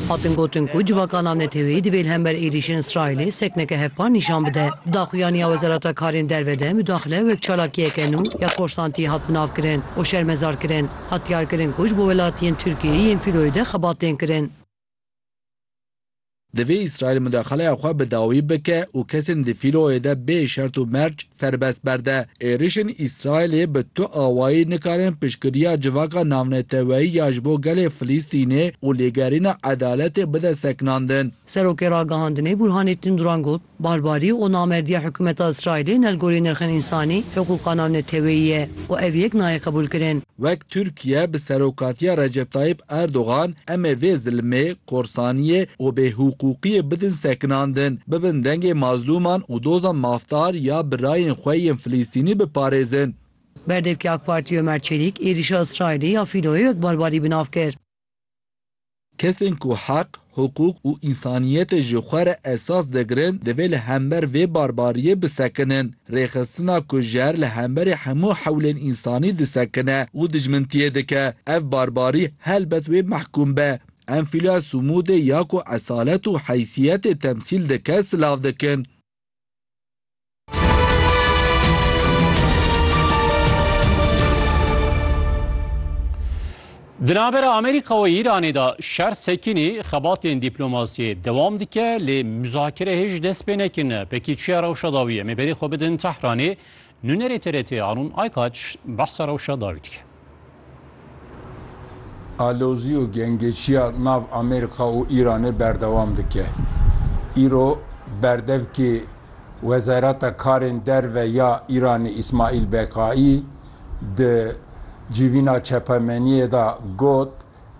Hatin gotin ku civakana neteweyî divê li hember êrîşên Îsraîlê sekneke hevpar nîşan bide. Di daxuyanî ya Wezareta Karên Derve de mudaxile wek çalakiyeke nû ya korsantiyê hat binavkirin û şermezarkirin hat diyarkirin ku ji bo welatiyên Tirkiyeyê yên fîloyê de xebat tên kirin. Divê Îsraîl mudaxaleya xwe bi dawî bike û kesên di fîloyê de bê şert û merc Serbest berde, êrişên Îsraîlê bi tu awayî nikarin piştgiriya civaka navneteweyî ya ji bo gelê Filîstînê û lêgerîna edaletê bide sekinandin. Serokê Ragihandinê Bûrhanê Tunduran got, Barbarî û namerdiya hikûmeta Îsraîlê ne li gorî nirxên însanî, hiqûqa navneteweyî ye û ev yek nayê qebûlkirin. Tirkiye bi serokatiya Recep Tayyip Erdogan em ê vê zilmê, korsaniyê û bêhiqûqiyê bidin sekinandin, bibin dengê mazlûman û doza mafdar ya birayên xwe yên Filîstînî biparêzin. Berdevkê AK Partiyê Ömer Çelîk êrîşa Îsraîlê ya fîloyê wek barbarî bi nav kir. Kesên ku heq, hiqûq û însaniyetê ji xwe re esas digirin divê li hember vê barbariyê bisekinin. Rêxistina ku ji her li hemberî hemû hewlên însanî disekine û dijmintiyê dike, ev barbarî helbet wê mehkûm be. Em fîlya sumûdê ya ku esalet û heysiyetê temsîl dike silav dikin. Di navbera Amerîka û Îranê de şer sekînî xebatên dîplomasiyê dewam dike lê muzakere hêj dest pê nekirine. Pekî çiya rewşa dawî em ê berê xwe bidin Tehranê Nûnerê TRT'ê Arun Aykaç behsa rewşa dawî dike. Alozî û gengeşiya nav Amerîka û Îranê berdewam dike. Îro berdevkê Wezareta Karên Derve ya Îranê Îsmaîl Beqaî di civîna çapemeniyê de got,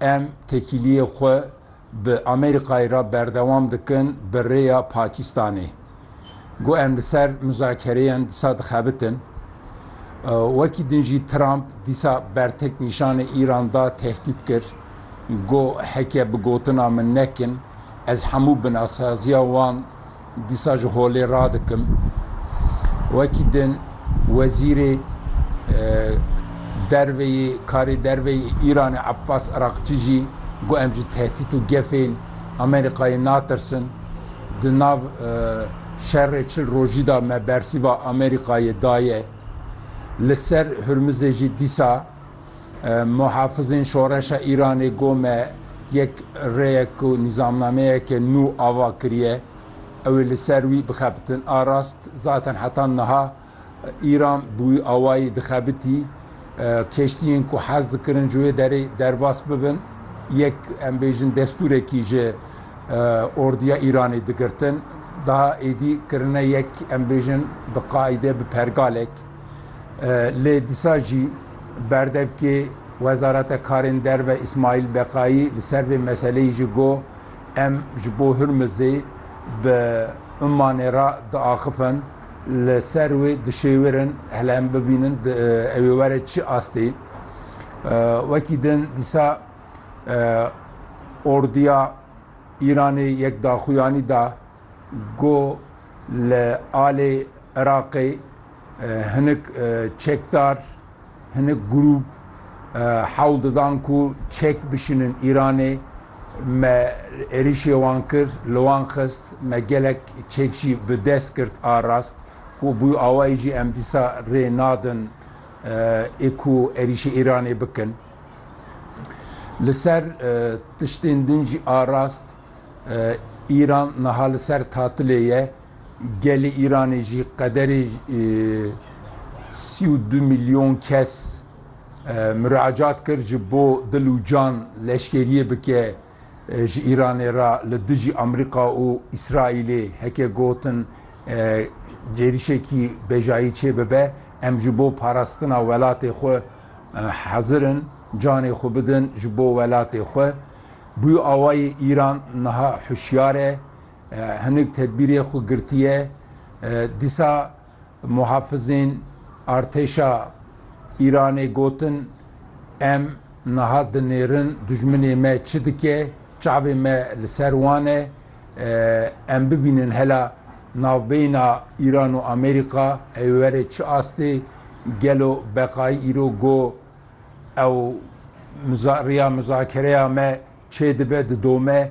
Em tekîliyê xwe bi Amerîkayê re berdewam dikin bi rêya Pakistanê. Got em li ser muzakereyan dîsa dixebitin. Wekî din jî Trump dîsa bertek nîşanê Îran da tehdît kir. Got heke bi gotina min nekin ez hemû binasaziya wan Dîsa ji holê radikim wekî din Wezîrê Derve yê Karê Derve yê Îranê Ebbas Erakçî jî got em ji tehdît û gefên Amerîkayê natirsin. Di nav şerê çil rojî de me bersîva Amerîkayê daye. Li ser Hurmizê jî dîsa. Muhafizên Şoreşa Îranê got me yek rêyek û nîzamnameyeke nû ava kiriye, ew ê li ser wî bixebitin a rast. Zaten heta niha Îran bi wî awayî dixebitî. Keştiyên ku hez dikirin ji wê derê derbas bibin, yek em bêjin destûrekî ji ordiya Îranê digirtin. Daha êdî kirine yek em bêjin bi qaîde bi pergalek. Lê dîsa jî berdevkê Wezareta Karên Derve Îsmaîl Beqayî li ser vê meseleyê jî got, Em ji bo Hurmizê bi Ummanê re diaxifin, li ser wê dişêwirin hele em bibînin ew ê were çi astê. Wekî din dîsa orduya Îranê yek daxuyanî da, Ku li alê Iraqê hinek çekdar, hinek grûp hewl didan ku çek bişînin Îranê, me êrîşê wan kir, li wan xist, me gelek çek jî bi dest girt a rast. Ku bi wî awayî jî em dîsa rê nadin ê ku êrîşê Îranê bikin. Li ser tiştên din jî a rast. Îran niha li ser tatilê ye. Gelê Îranê jî qederê sî û du milyon kes muracat kir ji bo dil û can leşkeriyê bike ji Îranê re li dijî Amerîka û Îsraîlê. Heke gotin êrişekî bejayî çê bibe, em ji bo parastina welatê xwe hezir in canê xwe bidin ji bo welatê xwe. Bû awayê Îran niha hişyar e, hinek tedbîrê xwe girtiye. Dîsa muhafizên artêşa Îranê gotin, Em niha dinêrin dijminê me çi dike, çavê me li ser wan e. Em bibînin hela navbeyna Îran û Amerîka ê were çi astê, gelo beqayî îro go Ew riya mizakereya me çêdibe didome